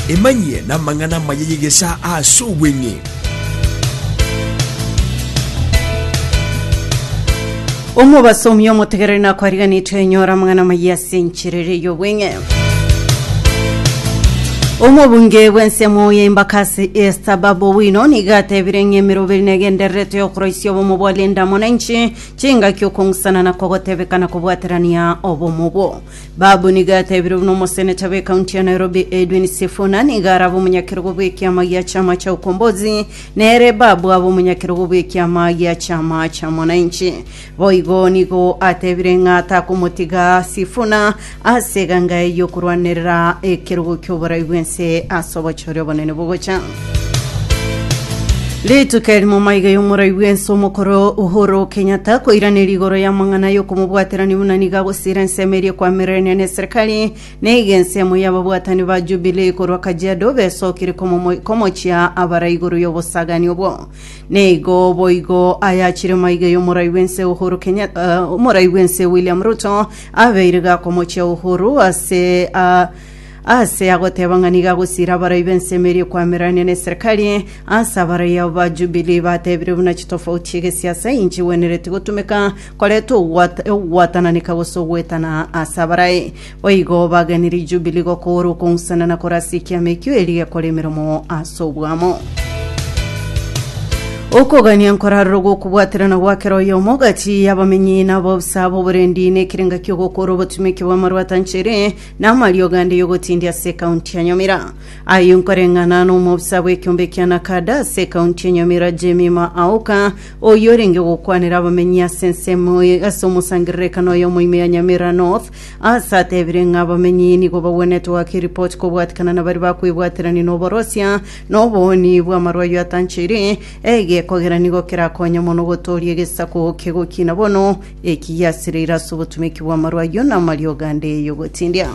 Emanyie namang'ana amaya y'egesaa aase obweng'e. Omobasomi omotegereri nakwariganetwe enyora amang'ana amaya ase enchera eria y'obweng'e. Omobunge bw'ensemo ya Embakasi East Bob Owino nigo atebire ng'a emeroberi negendererete y'okoroisia obomo bwa Linda Mwananchi chingaki okong'usana na kogotebeka na kobwaterania obomo obwo. Babu nigo yatebirwe buna omosenecha b'ekaunti ya Nairobi Edwin Sifuna nigo arabe omonyakerogo bw'ekiama gia chama cha Ukombozi nere Babu abe omonyakerogo bw'ekiama gia chama cha Mwananchi. Boigo nigo atebire ng'a takomotiga Sifuna ase eganga eye y'okorwanerera ekerogo ki'oborai bw'ense ase obochore obonene bogocha. Rituko eri momaiga y'omorai bw'ense omokoro Uhuru Kenyatta koiraneria igoro y'amang'ana y'okomobwaterania buna nigo agosiira ensemo eria ekwamirirania na eserikari neiga ensemo y'ababwatani ba Jubilee korwa Kajiado besokire komomo- komochia abarai igoro y'obosagani obwo. Neigo boigo ayachire maiga y'omorai bw'ense Uhuru Kenyatta eh, omorai bw'ense William Ruto abeire gakomochia Uhuru ase ah, Aase agoteeba ng'a nigo agosiira abarai b'ensemo eria ekwamererania n'eserikari, aase abarai abo ba Jubilee bateebire buna chitofauti chi'egesiasa inchigwenereti gotumeka koreta ogwat- ogwatananeka gose ogwetana aase abarai. Boigo bagenire Jubilee gokoora okong'usana na kore ase ekiama ekio erio gekora emeremo ase obwamo. Okogania nkorarora gw'okobwaterana gwa kera oyomo gati y'abamenyi na ab'obosae b'oborendi nekirenga ki'ogokoora obotumeki bw'amarwata nchere Namariogo ande y'ogotindia ase ekaunti ya Nyamira. Ayio nkoreng'ana n'omobisa bw'ekeombe kia Nakada ase ekaunti ya Nyamira Jemima Aoka, oyio orenge gokwanera abamenyi ase ensemo eye ase omosangererekano oyomo ime ya Nyamira North, ase atebire ng'a abamenyi nigo bagwenerete goaka eripoti kobwatikana na baria bakwebwaterania n'oborosia na obooni bw'amarwa ayio atancheire, egekogera nigo kerakonye mono gotooria egesaku kegokina bono Eki giasireire ase obotumeki bw'amarwa ayio na amariogo ande y'ogotindia.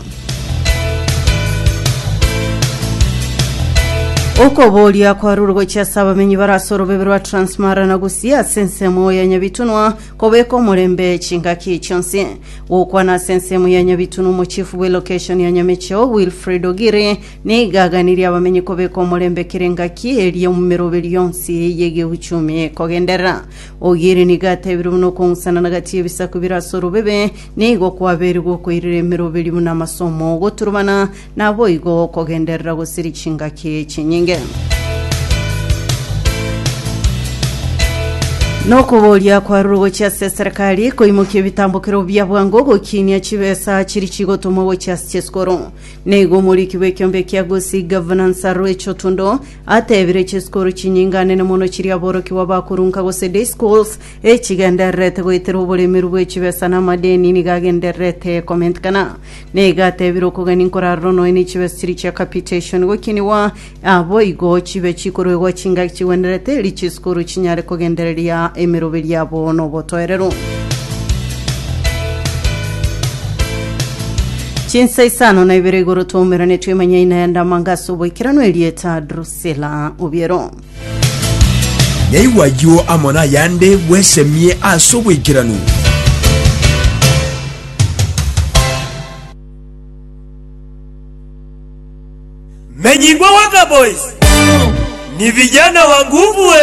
Okoboria kwarure gochia ase abamenyi bare ase orobebe rwa Transmara na Gusii ase ensemo ya Nyabitunwa kobeka omorembe chingaki chionsi. Gokwana ase ensemo ya Nyabitunwa omochifu bw'elokeshoni ya Nyamecheo Wilfred Ogiri nigo aganirie abamenyi kobeka omorembe kera engaki eria omumeroberi yonsi y'egeuchumi ekogenderera. Ogieri nigo atebirie buna okong'usana na gati y'ebisaku bire ase orobebe, nigo kwabeire gokoirera emeroberio buna amaso 'omoo goturubana, naboigo okogenderera gosiria chingaki chinyinge. Nokoboria kwarure gochia ase eserekari koimokia ebitambokero bia bwango gokinia chibesa chiri chigotumwa gochia ase chisukuru. Nigo omoriki bw'ekiombe ekia Gusii Governance Arue Chotundo Atebire chisukuru chinyinganene mono chiria aborokigwa bakorunka gose day schools echigendererete goetera oboremeru bw'echibesa na amadeni nigo agendererete komentekana. Nigo atebire okogania nkorarora nonya ne chibesa chiria chia capitation gokinigwa aboigo chibe chikoruegwa chingaki chigwenerete erio chisukuru chinyare kogendereria emeroberi yabo nobotoereru. Chinsa isano na ibere igoro twaumeranetwe emanyaina ya ndamanga ase oboikeranu erieta Drusilla Obiero. Naigwe ayio amo nayande bwesemie ase oboikeranu. Menyigwa Wakaboys ni vijana wa nguvu ee.